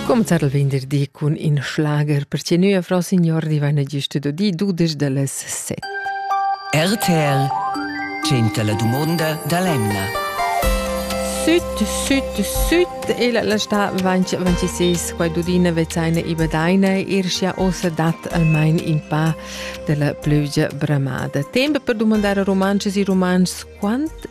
Comenzar il venderdi cun in schlager per che nua Frau Signor di vaina giusto di dudesch da les set. RTL 100 la dumonda da l'Emna. Süt, süt, süt e la, la sta 26 qua dudina vezaina i badaina irschia osa dat almain in pa della plügia bramada. Tempo per domandare romances e romans quant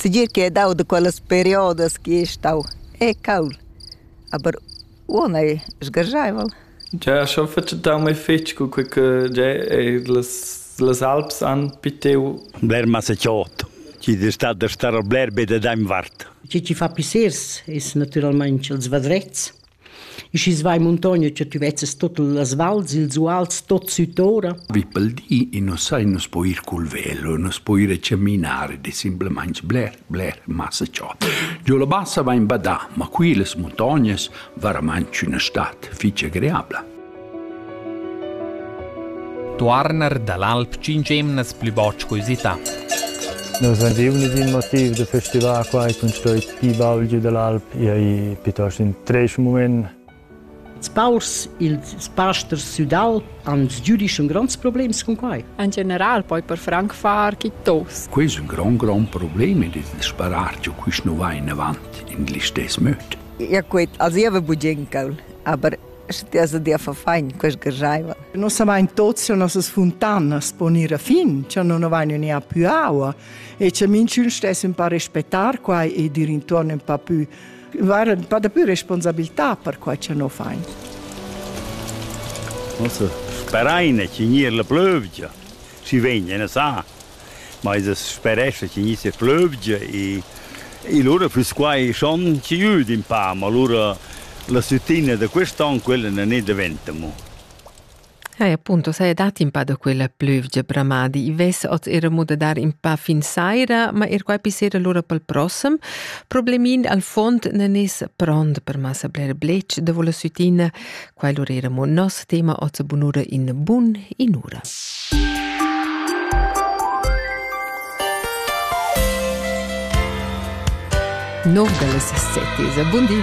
Segir ch'ei dau da quellas periodas che ei stau e cauld, aber uonn ei sgarscheivel. Gia schon fatg dau mei fetg cu quei che gia eir las las alps han pitiu. Bler masecciot, chi es stat da star bler be dad aint vart. Chi chi fa pissers es natüralmaing ils vadrets. Schi's va in muntogna cha tü vezzas tuot las vals, ils uals tuot sütt'ora. Vi pel di i nu sai, nu s'po ir cul velo, nu s'po ir a chaminare, di simplamaing bler, bler massa ciò. Giù la bassa va in badà, ma qui las muntognas varamaing üna stat fich agreabla. Tuorner dall'alp tschintg emnas pli buc co usità. Nus ein giuvnis in motiv da festivar quai cun stoi ti baulgi dall'alp e ai piuttosto in treis mument. Spaurs, ils pasters sudal han giudisch un gronds problems con quai. In general poi per franc far chi tos. Quei è un gran grond problem ed il sparar giu quist nu va in avant in glistes möd. Ja quet, also ich habe Bujenkel, aber Sche ti has dia fa fein, quest gergaiva. Nossamain tots jo nossas funtanas pon ir a fin, che non avain ni a più aua e che minchun stess un pa respettar quai e dir intorno un pa più var un pa da più responsabilità per quai che no fain. Mosse, speraine ci gnir la plövgia. Si vegna, ne sa. ma es sperescha chi gni se plövgia e e lura füss quai schon chi üd in pa, ma lura la süttina da quest'an quella na ne daventa mo. Hai appunto sei dat in pa da quella plövgia bramadi, i ves oz era mo da dar in pa fin saira, ma er quai pissera lura pel prossem. Problemin al fond nan es pront per massa bler blech, da vola süttina Quai lur era mo nos tema oz bunura in bun inura. Nord delle 7 buondì.